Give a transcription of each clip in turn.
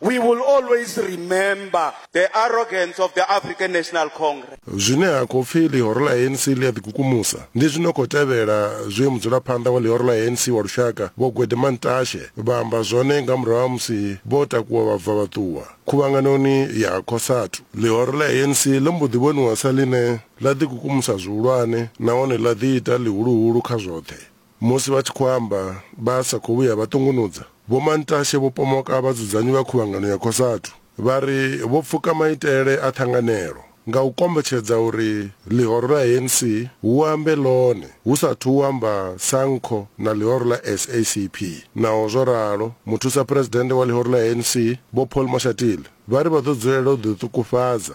We will always remember the arrogance of the African National Congress. Zwine ha khou pfi ḽihoro ḽa ANC ḽi a ḓikukumusa ndi zwi no khou tevhela zwe mudzulaphanḓa wa ḽihoro ḽa ANC wa lushaka Vho Gwede Mantashe vha amba zwone nga murahu ha musi vho takuwa vha bva vha ṱuwa khuvhanganoni ya ha Cosatu. Ḽihoro ḽa ANC ḽo mbo ḓi vhoniwa sa ḽine ḽa ḓikukumusa zwihulwane nahone ḽa ḓiita ḽihuluhulu kha zwoṱhe. Musi vha tshi khou amba, vha sa khou vhuya vha ṱungunudza. Vho Mantashe vho pomoka vhadzudzanyi vha Khuvhangano ya Cosatu vha ri vho pfuka maitele a ṱhanganelo nga u kombetshedza uri ḽihoro ḽa ANC hu ambe ḽone hu sa athu u amba Sanco na ḽihoro ḽa SACP. Naho zwo ralo, Muthusaphuresidennde wa ḽihoro ḽa ANC, Vho Paul Mashatile, vha ri vha ḓo dzulela u ḓiṱukufhadza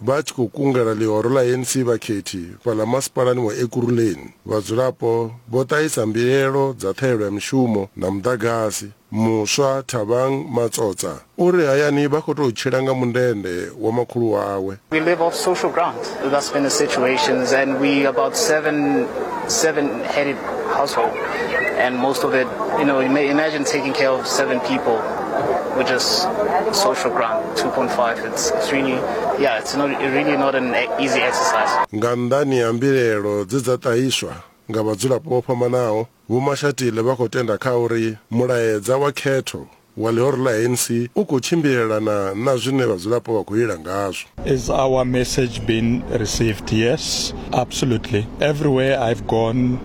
Vha tshi khou kungela ḽihoro ḽa ANC vhakhethi fhaḽa masipalani wa Ekurhuleni, vhadzulapo vho ṱahisa mbilaelo dza ṱhahelelo ya mishumo na muḓagasi. Muswa Thabang Matsotsa u ri hayani vha khou tou tshila nga mundende wa makhulu wawe. We live off social grant, that's been the situation and we about seven, seven headed household and most of it, you know, imagine taking care of seven people with just social grant, 2.5. Nga nnḓani ha mbilaelo dze dza ṱahiswa nga vhadzulapo vho fhambanaho, Vho Mashatile vha khou tenda kha uri mulaedza wa khetho wa ḽihoro ḽa ANC u khou tshimbilelana na zwine vhadzulapo vha khou lila ngazwo. Is our message been received? Yes, absolutely. Everywhere I've gone.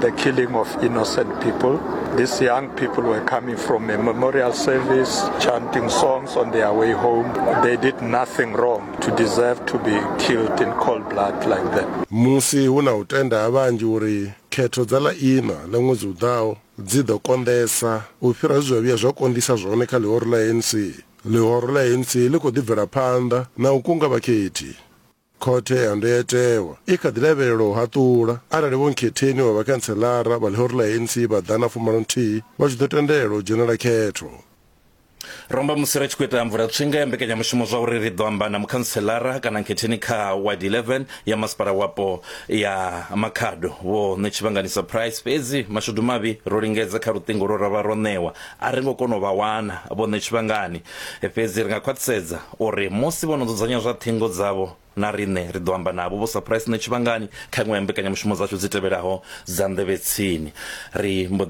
the killing of innocent people. These young people were coming from a memorial service, chanting songs on their way home. They did nothing wrong to deserve to be killed in cold blood like that. Musi hu na u tenda ha vhanzhi uri khetho dza ḽa iṋa ḽa ṅwedzi u ḓaho dzi ḓo konḓesa u fhira zwe zwa vhuya zwa konḓisa zwone kha ḽihoro ḽa ANC, ḽihoro ḽa ANC ḽi khou ḓi bvela phanḓa na u kunga vhakhethi. Khothe ya Ndayotewa i kha ḓi lavhelelwa u haṱula arali Vho Nkhetheni wa vhakhantselara vha ḽihoro ḽa ANC vha ḓana fumalo nthihi vha tshi ḓo tendelwa u dzhenela khetho. Ro amba musi ri tshi khou ita mvulatswinga ya mbekanyamushumo zwa uri ri ḓo amba na Mukhantselara kana Nkhetheni kha Ward 11 ya Masipala Wapo ya Makhado, Vho Ṋetshivhanganisa Price, fhedzi mashudu mavhi ro lingedza kha luṱingo lwo ra vha ro ṋewa a ri ngo kona u vha wana. Vho Ṋetshivhangani, Fhedzi ri nga khwaṱhisedza O ri, Musi vho no dzudzanya zwa ṱhingo dzavho, na riṋe ri ḓo amba navho vho sa phuraisi nṋe tshivhangani kha iṅwe ya mbekanyamushumo dzashu dzi tevhelaho dza nḓevhetsini. Ri mbo